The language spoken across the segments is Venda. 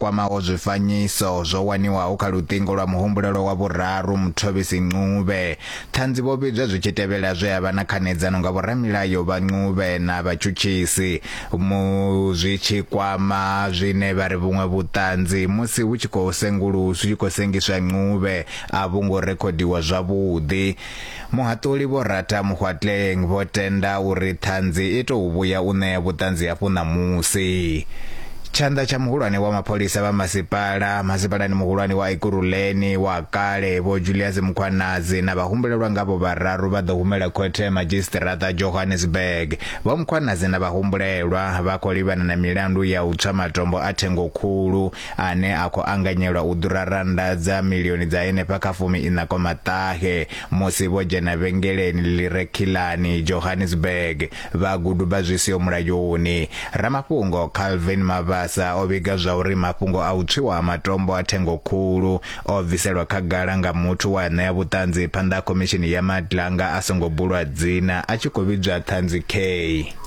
kwamaho zwifanyiso zwo waniwaho kha luṱingo lwa muhumbulelwa wa vhuraru Muthobisi Ncube. Ṱhanzi vho vhidzwa zwi tshi tevhela zwe a vha na khanedzano nga vhoramilayo vha Ncube na vhatshutshisi mu zwi tshi kwama zwine vha ri vhuṅwe vhuṱanzi musi hu tshi khou sengulusi tshi khou sengiswa Ncube a vhu ngo rekhodiwa zwavhuḓi. Muhaṱuli Vho Ratha Mokgoatleng vho tenda uri ṱhanzi i tou vhuya u ṋea vhuṱanzi hafhu ṋamusi. Tshanḓa tsha muhulwane wa mapholisa vha masipala masipalani muhulwane wa Ekurhuleni wa kale Vho Julius Mukhwanazi na vhahumbulelwa ngavho vhararu vha ḓo humela khothe ya madzhisiṱiraṱa Johannesburg. Vho Mukhwanazi na vhahumbulelwa vha khou livhana na milandu ya u tswa matombo a thengo khulu ane a khou anganyelwa u ḓura rannda dza milioni dza henefha kha fumi iṋakoma ṱahe musi vho dzhena vhengeleni ḽi re Khilani, Johannesburg, vha guduba zwi siho mulayoni. Ramafhungo Calvin Mabasa o vhiga zwa uri mafhungo a u tswiwa ha matombo a thengo khulu o bviselwa khagala nga muthu wa ṋea vhuṱanzi phanḓa ha khomishini ya Madlanga a songo bulwa dzina a tshi khou vhidzwa Ṱhanzi Kay.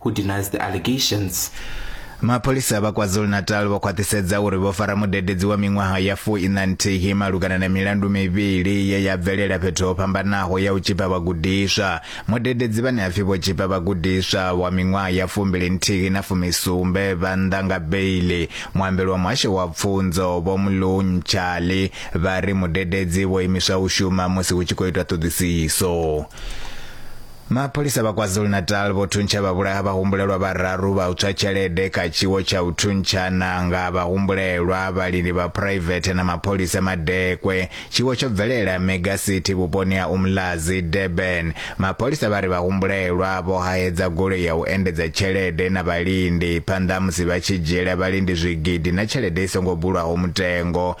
who denies the allegations. mapholisa vha kwazulu-natal vho khwaṱhisedza uri vho fara mudededzi wa miṅwaha ya fu ina nthihi malugana na milandu mivhili ye ya bvelela fhethu ho fhambanaho ya u tshipa vhagudiswa mudededzi vhane ha pfi vho tshipa vhagudiswa wa miṅwaha ya fumbili nthihi na fumisumbe vha nnḓa nga beili muambeli wa muhasho wa pfunzo vho mlunchali vha ri mudededzi vho imiswa u shuma musi hu tshi khou itwa ṱhoḓisiso Mapholisa vha KwaZulu-Natal vho thuntsha vhavhulaha vhahumbulelwa vhararu vha u tswa tshelede kha tshiwo tsha u thuntshana nga vhahumbulelwa, vhalindi vha phuraivethe na mapholisa madekwe. Tshiwo tsho bvelela Mega City vhuponi ha Umlazi, Durban. Mapholisa vha ri vhahumbulelwa vho hahedza goloi ya u endedza tshelede na vhalindi phanḓa ha musi vha tshi dzhiela vhalindi zwigidi na tshelede i songo bulwaho mutengo.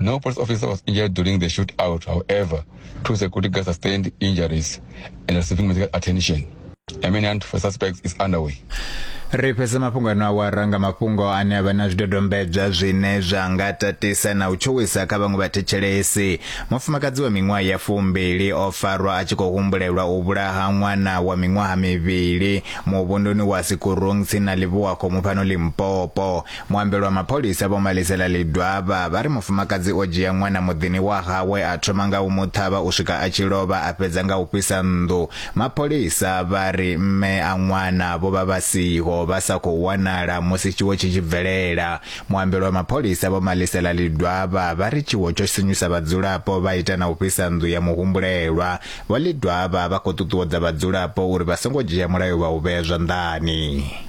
No police officer was injured during the shootout. However, two security guards sustained injuries and are receiving medical attention. A manhunt for suspects is underway. ri fhedza mafhungo ano awara nga mafhungo ane a vha na zwidodombedzwa zwine zwa nga tatisa na u tshuwisa kha vhaṅwe vhathetshelesi mufumakadzi wa miṅwaha ya fumbili o farwa a tshi khou humbulelwa u vhulaha ṅwana wa miṅwaha mivhili muvhunduni wa sikurung tsini na livhuwa khomu fhano limpopo Muambeli wa mapholisa Vho Malisela Lidwaba vha ri mufumakadzi o dzhia ṅwana muḓini wa hawe a thoma nga u mu ṱhavha u swika a tshi lovha a fhedza nga u fhisa nnḓu. Mapholisa vha ri mme a ṅwana vho vha vha siho vha sa khou wanala musi tshiwo tshi tshi bvelela. Muambeli wa mapholisa Vho Malisela Lidwaba vha ri tshiwo tsho sinyusa vhadzulapo vha ita na u fhisa nnḓu ya muhumbulelwa. Vho Lidwaba vha khou ṱuṱuwedza vhadzulapo uri vha songo dzhia mulayo vha u vhea zwanḓani.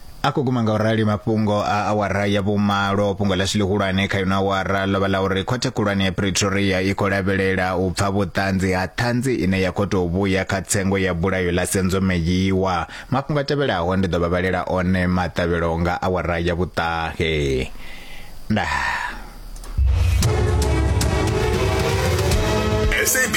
A khou guma nga u rali mafhungo a awara ya vhumalo. Fhungo ḽashu ḽihulwane kha ino awara ḽo vha ḽa uri Khothe Khulwane ya Pretoria i khou lavhelela u pfa vhuṱanzi ha ṱhanzi ine ya khou tou vhuya kha tsengo ya bulayo ḽa Senzomeyiwa. Mafhungo a tevhelaho ndi ḓo vha vhalela one maṱavhelo nga awara ya vhuṱahe. Ndaa.